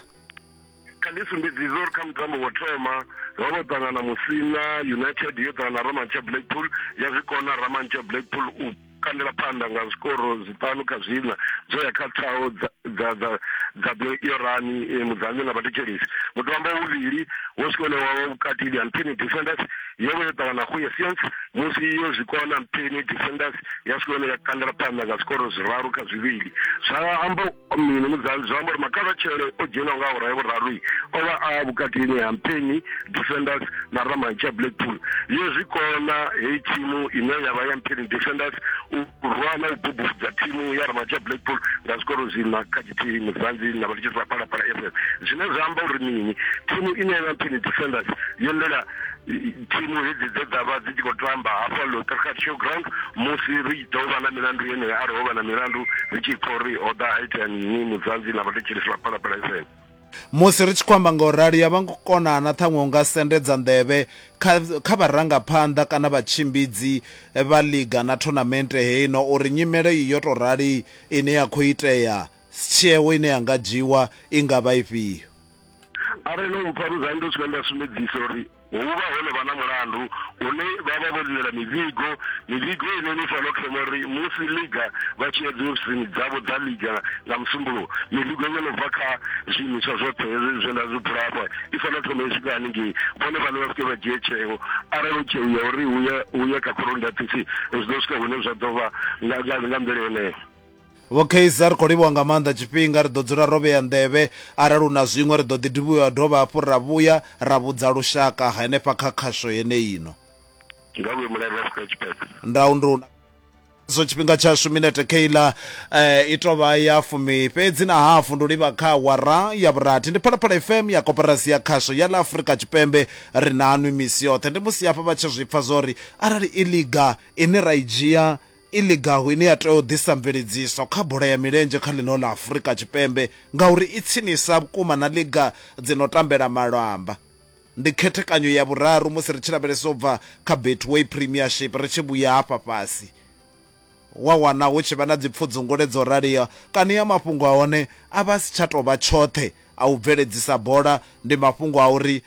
kha ndi sumbedzise uri kha mutambo wo thoma ro vho ṱangana musina united yo ṱangana ramantsha blackpool ya zwi kona ramantsha blackpool u kandela phanḓa nga zwikoro zwiṱanu kha zwiṋa zwo ya kha thaho dza dza dza dza yorani e, mudzanyo na vhathetshelesi mutambo wavhuvhili wo swika une wavha vhukati ndi ampeni defenders yo vha yo ṱangana go ya science musi yo zwikona ampeni defenders ya swika hune ya kandela phanḓa nga zwikoro zwiraru kha zwivhili zwa amba Mini mudzanzi zwi amba uri makavhatshele o dzhielwa nga awara ya vhuraru o vha a vhukatini ha Mpeni Defenders na Ramantsha Blackpool. Yo zwi kona heyi thimu ine ya vha ya Mpeni Defenders u rwa na u bubudza thimu ya Ramantsha Blackpool nga zwikoro zwiṋa kha tshithihi mudzanzi na vha litshisa Phalaphala FM. Zwine zwa amba uri mini thimu ine ya vha Mpeni Defenders yo ḽela Thimu hedzi dzo ḓa vha dzi tshi khou tamba hafha Lotterkar Showground musi ri tshi ḓo vha na milandu yeneyo arali ho vha na milandu ri tshi pfa uri ho ḓa ha itea mini muzanzi na vhathetshelesi vha Phalaphala FM. Musi ri tshi khou amba nga u rali, ya vha ngo kona na ṱhaṅwe u nga sendedza nḓevhe kha kha vharangaphanḓa kana vhatshimbidzi vha ḽiga na thonamente heino uri nyimele iyi yo tou rali ine ya khou itea, tsheo ine ya nga dzhiiwa i nga vha ifhio. arali no mpfa vhudzani ndo swika nda sumbedzisa uri hu vha hone vha na mulandu une vha vha vho lilela mivhigo mivhigo ine ni fanela u thoma uri musi liga vha tshi ya dzi ofisini dzavho dza liga nga musumbuluwo mivhigo yo no bva kha zwiimiswa zwoṱhe hezwi zwe nda zwi bula hafha i fanela u thoma i swika haningei vhone vhane vha swike vha dzhie tsheo arali u tsheo ya uri hu ye kha khoroni ndatisi zwi ḓo swika hune zwa ḓo vha nga nḓila yeneyo Vho Kayser, ri khou livhuwa nga maanḓa tshifhinga. Ri ḓo dzula ro vhea nḓevhe. Arali hu na zwiṅwe, ri ḓo ḓi livhuwa dovha hafhu ra vhuya ra vhudza lushaka henefha kha khasho yeneino. Nga vhuimo ḽa Afrika Tshipembe. Ndau ndi u na. Zwo tshifhinga tshashu minete Kayla i tou vha ya fumi fhedzi na hafu. Ndi u livha kha awara ya vhurathi. Ndi Phalaphala FM ya Koporasi ya Khasho ya ḽa Afrika Tshipembe. Ri nanwi misi yoṱhe. Ndi musi hafha vha tshi zwi pfa zwa uri arali i ḽiga ine ra i dzhia i ligaho ine ya tea u ḓisa mveledziso kha bola ya milenzhe kha ḽino ḽa Afurika Tshipembe ngauri i tsinisa vhukuma na liga dzi no tambela malamba. Ndi khethekanyo ya vhuraru musi ri tshi lavhelesa u bva kha Betway Premiership ri tshi vhuya hafha fhasi, wa wana hu tshi vha na dzipfudzungule dzo raliho kani a mafhungo a hone a vha a si tsha tou vha tshoṱhe a u bveledzisa bola, ndi mafhungo a uri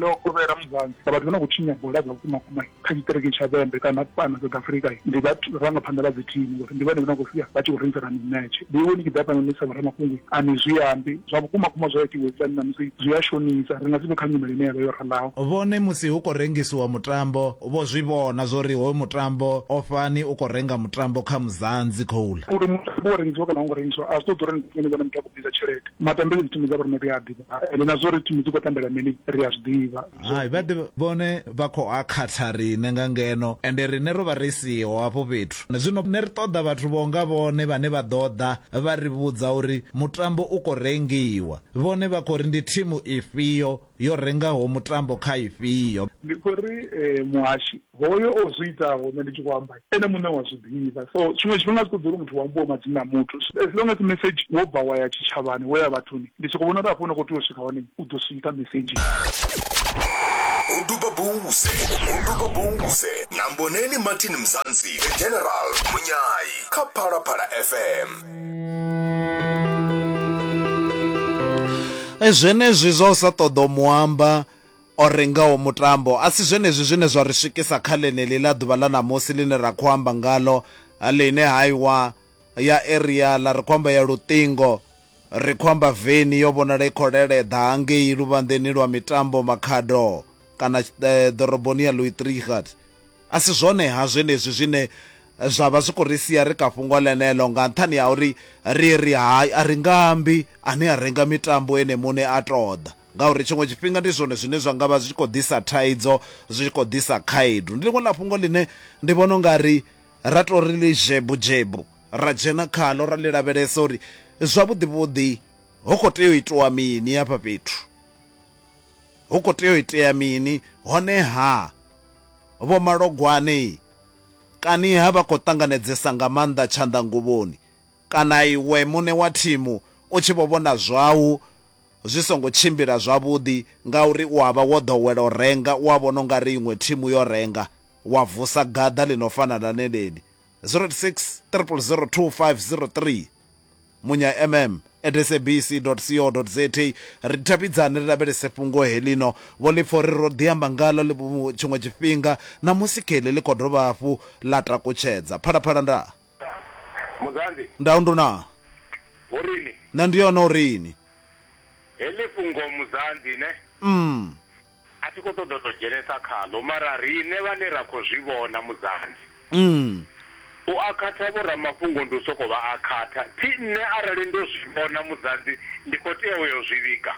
ḽo kovhela muzanzi sa vhathu vha no khou tshinya bola dza vhukumakuma kha tshiṱiriki tsha Vhembe kana fhano South Africa ndi vharangaphanḓa vha dzi thimu ngori ndi vhone vha no khou sia vha tshi khou rengisana mimetshe vheiwe ni tshi ḓa fhano ni sa vhoramafhungo a ni zwi ambi zwa vhukumakuma zwa itiwa hezwiḽani ṋamusi zwi a shonisa ri nga si vhe kha nyimele ine ya vha yo ralaho. Vhone musi hu khou rengisiwa mutambo Vho zwi vhona zwo ri hoyu mutambo o fhani u khou renga mutambo kha muzanzi khouḽa. Uri mutambo wo rengisiwa kana a u ngo rengisiwa a zwi ṱoḓi uri ndi vhone vhane muthu a khou bvisa tshelede. Matambele dzi thimu dza vho riṋe ri a a ḓivha ende na zwa uri thimu dzi khou tambela mini ri a zwi ḓivha. Hai, vha ḓe vhone vha khou a khatha riṋe nga ngeno ende riṋe ro vha ri siho hafho fhethu. Zwino nṋe ri ṱoḓa vhathu vho nga vhone vhane vha ḓo ḓa vha ri vhudza uri mutambo u khou rengiwa. Vhone vha khou ri ndi thimu ifhio yo rengaho mutambo kha ifhio. Ndi khou ri muhashi hoyo o zwi itaho nṋe ndi tshi khou amba ene muṋe u a zwi ḓivha, so tshiṅwe tshifhinga a zwi ṱoḓi uri muthu hu ambiwe madzina a muthu, as long as mesedzhi wo bva wa ya tshitshavhani, wo ya vhathuni, ndi sokou vhona uri hafho hune u khou tea u swika hone u ḓo swika mesedzhini. Muduba Bouse Muduba Bouse na Mboneni Martin Mzansi, The General Munyai kha Phalaphala FM. e zwenezwi zwa u sa ṱoḓa u muamba o rengaho mutambo a si zwenezwi zwine zwa ri swikisa kha ḽeneḽi ḽa ḓuvha ḽa ṋamusi ḽine ra khou amba ngalo ḽine haiwa ya area ḽa ri khou amba ya luṱingo ri khou amba veni yo vhonala i khou leleḓa hangei luvhanḓeni lwa mitambo makhado kana eh, ḓoroboni ya louis trigard A si zwone-ha zwenezwi zwine zwa vha zwi khou ri sia ri kha fhungo ḽeneḽo nga nṱhani ha uri ri ri hai, a ri nga ambi, ane a renga mitambo ene muṋe a tou ḓa? Ngauri tshiṅwe tshifhinga ndi zwone zwine zwa nga vha zwi tshi khou ḓisa thaidzo, zwi tshi khou ḓisa khaedu. Ndi ḽiṅwe ḽa fhungo ḽine ndi vhona u nga ri ra tou ri ḽi dzhebu-dzhebu, ra dzhena khaḽo ra ḽi lavhelesa uri zwavhuḓi-vhuḓi hu khou tea u itiwa mini hafha fhethu. Hu khou tea u itea mini honeha? Vho Malogwane, Kaniha vha khou ṱanganedzesa nga maanḓa tshanḓanguvhoni kana iwe muṋe wa thimu u tshi vho vhona zwau zwi songo tshimbila zwavhuḓi ngauri u a vha wo ḓowela u renga, u a vhona u nga ri iṅwe thimu yo renga, wa vusa gaḓa ḽi no fana na ḽeneli, 086 000 2503. munya mm at sabc co za ri davhidzane ri lavhelese fhungo helino vho ḽi pfa uri ro ḓi amba ngalo tshiṅwe tshifhinga na musi kheḽi ḽi khou dovha hafhu ḽa takutshedza phalaphala nda Muzanzi. nda undu na Ho rini? na ndi yone uri ni Heḽi fhungo Muzanzi ne? mm. A thi khou ṱoḓa u tou dzhenesa khaḽo, mara riṋe vhane ra khou zwi vhona, Muzansi, u a khatha vhoramafhungo ndi u sokou vha a khatha. Thi nṋe arali ndo zwi vhona, Muzansi, ndi khou tea u yo zwi vhiga.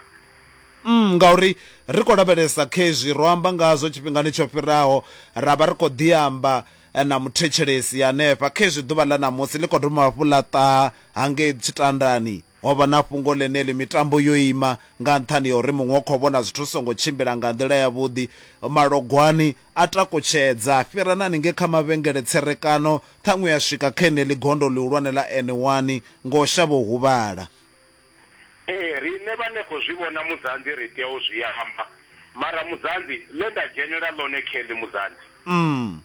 Ngauri ri khou lavhelesa kha izwi ro amba ngazwo tshifhingani tsho fhiraho, ra vha ri khou ḓi amba na muthetshelesi hanefha, khezwi ḓuvha ḽa ṋamusi ḽi khou dovha hafhu ḽa ṱaha hangei tshitandani. Ho vha na fhungo ḽeneḽi, mitambo yo ima nga nṱhani ha uri muṅwe u khou vhona zwithu zwi songo tshimbila nga nḓila yavhuḓi. Malogwani a takutshedza, a fhira na haningei kha mavhengele tserekano, ṱhaṅwe a swika kha heneḽi gondo ḽihulwane ḽa N one nga u shavha u huvhala. Ee, riṋe vhane khou zwi vhona Mudzanzi ri tea u zwi amba. Mara Mudzanzi, ḽe nda dzhenela ḽone Kelly Mudzanzi. Umm.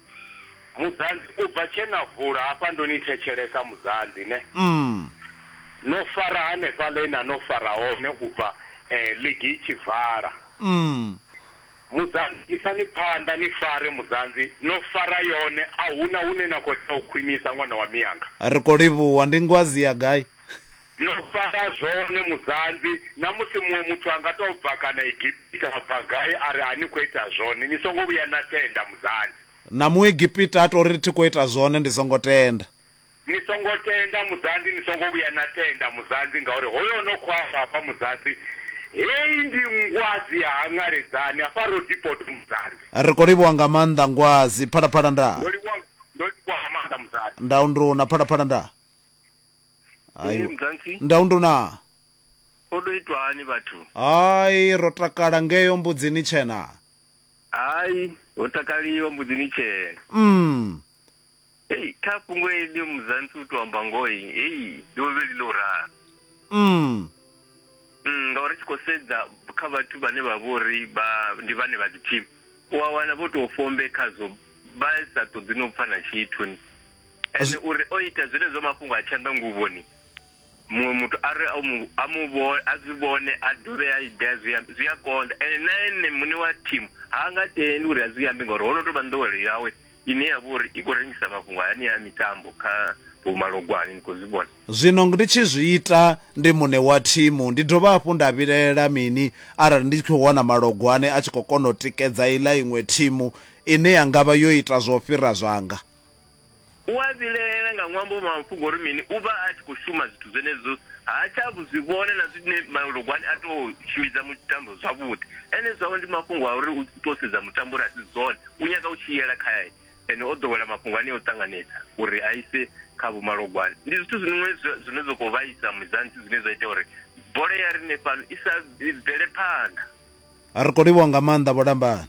Mudzanzi, U bva tshe na vula hafha ndo ni thetshelesa Mudzanzi ne no fara hanefhaḽa he na no fara hone u bva ligi i tshi vala. Mudzanzi, Isani phanḓa ni fare Mudzanzi, no fara yone a hu na hune na khou tea u khwinisa ṅwana wa mianga. Ri khou livhuwa, ndi ngwazi ya gai? No fara zwone Mudzanzi, na musi muṅwe muthu a nga tou bva kana Egipita a bva gai a ri a ni khou ita zwone ni songo vhuya na tenda Mudzanzi. Na Muegipita a tou ri thi khou ita zwone, ndi songo tenda. Ni songo tenda, muzanzi, ni songo vhuya na tenda, muzanzi, ngauri hoyo o no khou amba hafha, muzanzi, Hei ndi ngwadzi ya hangaledzani hafha Rodipoto, muzanzi. Ri khou livhuwa nga maanḓa, ngwadzi, Phalaphala ndaa. Ndo livhuwa, ndo livhuwa nga maanḓa, muzanzi. Ndau nduna, Phalaphala ndaa. Ee, muzanzi. Ndau nduna. Ho tou itwa hani vhathu? Hai, ro takala ngeo Mbudzini Tshena. Hai, ho takaliwa mbudzi ni tshena. Mm. Hey, kha fhungo heḽi muzansi u tou amba ngoho hey, hey, ndi vho vheli ḽo ralo. Mm. Mm, ngauri tshi khou sedza kha vhathu vhane vha vhori vha ndi vhane vha dziphini u a wana vho tou fombe khazwo vha sa ṱoḓi no pfa na tshithu ni ende uri o ita zwenezwo mafhungo a tshanḓa nguvhoni muṅwe muthu a ri a mu a mu vho a zwi vhone a dovhe a idea zwi ambi zwi a konḓa ene na ene muṋe wa thimu ha nga tendi uri a zwi ambi ngori ho no tou vha nḓowelo yawe ine ya vha uri i khou rengisa mafhungo hani a mitambo kha vhumalogwane ni khou zwi vhona Zwino ndi tshi zwi ita ndi muṋe wa thimu ndi dovha hafhu nda vhilaela mini arali ndi tshi khou wana malogwane a tshi khou kona u tikedza iḽa iṅwe thimu ine ya ngavha yo ita zwo fhira zwanga? U a vhilaela nga ṅwambo wa mafhungo uri mini? U vha a tshi khou shuma zwithu zwenezwo, ha tsha vhu zwi vhona na zwine malugwani a tou tshimbidza mutambo zwavhuḓi. Ene zwawe ndi mafhungo a uri u tou sedza mutambo uri a si zwone, u nyaga u tshi yela khae ene o ḓowela mafhungo anea a u ṱanganedza uri a ise kha vhomalugwani. Ndi zwithu zwiṅwe zwine zwa khou vhaisa Mudzansi zwine zwa ita uri bola ya riṋe fhano i sa bvele phanḓa. Ri khou livhuwa nga maanḓa Vho Lambani.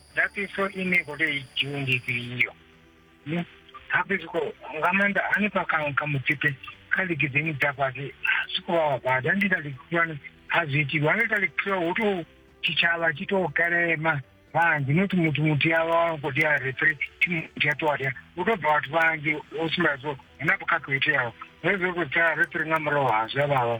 Ndatiso ine i khou tea i dzhiwe ndi ifhio hape zwi khou nga maanḓa hanefha kha kha mutsipe kha ligi dzine dza fhasi zwi khou vha wabadi a ndi ita ligi khulwane a zwi itiwa a ndi ita ligi khulwane hu tou tshitshavha tshi tou kelema vhanzhi not muthu muthu ya vha wa khou tea refri thimu muthu ya ṱuwa tea hu tou bva vhathu vhanzhi u sumbedza zwo hu na vhukhakhi ho iteaho hezwi ri khou tea refri nga murahu ha zwi a vhavha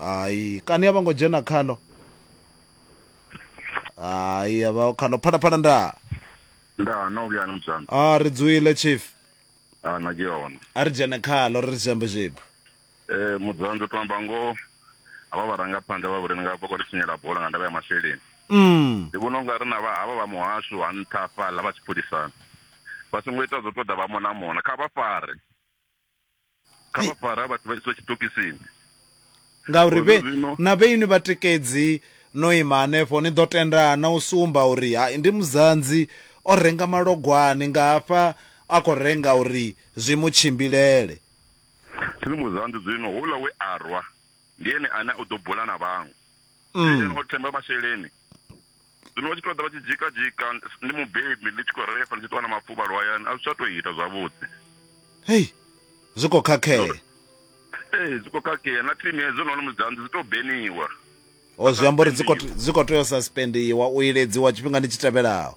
hayi kani a vho ngo dzhena khalo hayi a vha khalo phana phana nda nda no vhuya ni muzanga a ri dzwile chief a na ke yona a ri dzhene khalo ri ri dzhambe zwibu eh muzanga to amba ngo ava vharangaphanḓa vha vhulimi nga vha khou ri tshinyela bola nga ndavha ya masheleni mm ndi vhona unga ri na vha havha vha muhasho ha nṱha fhaḽa vha tshipholisana vha songo ita zwo ṱoḓa vha mona mona kha vha fare kha vha fara ha vhathu vha iswa tshitokisini ngauri vhe na vhe ini vhatikedzi no ima hanefho ni ḓo tenda na u sumba uri hai ndi muzanzi o renga malogwani nga hafha a khou renga uri zwi mu tshimbilele thi ni muzanzi zwino houḽa we a rwa ndi ene ane u ḓo bula na vhaṅwe mm. o themba masheleni Zwino vha tshi tou ḓa vha tshi dzhika dzhika ndi mubebi ndi tshi khou refa ndi tshi ṱuwa na mafuvhalo hayani a zwi tsha tou ita zwavhuḓi. Hei zwi khou khakhea. Ee zwi khou khakhea na thimu hedzo na hone musi dza nnḓu dzi tou beniwa. O zwi amba uri dzi khou tea u suspendiwa u iledziwa tshifhingani tshi tevhelaho.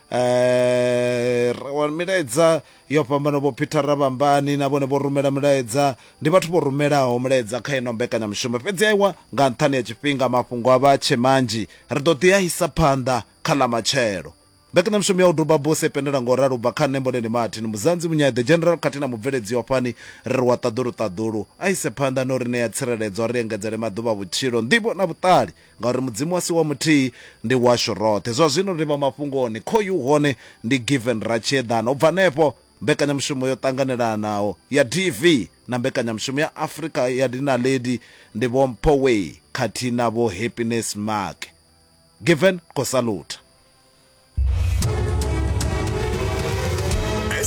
Eh, ri wana milaedza yo fhambana vho peter rabambani na vhone vho rumela milaedza ndi vhathu vho rumelaho milaedza kha ino mbekanyamushumo fhedzi aiwa nga nṱhani ya tshifhinga mafhungo a vha tshe manzhi ri ḓo ḓi a isa phanḓa kha ḽa matshelo mbekanyamushumo ya u duba bose pendela ngo ralo bva kha nṋe mboleni martin muzanzi munyai the general khathihi na mubveledzi wa fani ri ri wa ṱaḓulu ṱaḓulu a ise phanḓa no ri ṋea tsireledzo ri engedzele maḓuvha vhutshilo nḓivho na vhuṱali Ngauri Mudzimu a si wa muthihi, ndi washu roṱhe. Zwa zwino ri vha mafhungoni, khoyu hone ndi Given Ratshiedana. U bva henefho, mbekanyamushumo yo ṱanganelanaho ya DV na mbekanyamushumo ya Afrika ya Dinaledi ndi Vho Mpho Way khathihi na Vho Happiness Maake. Given khou salutha.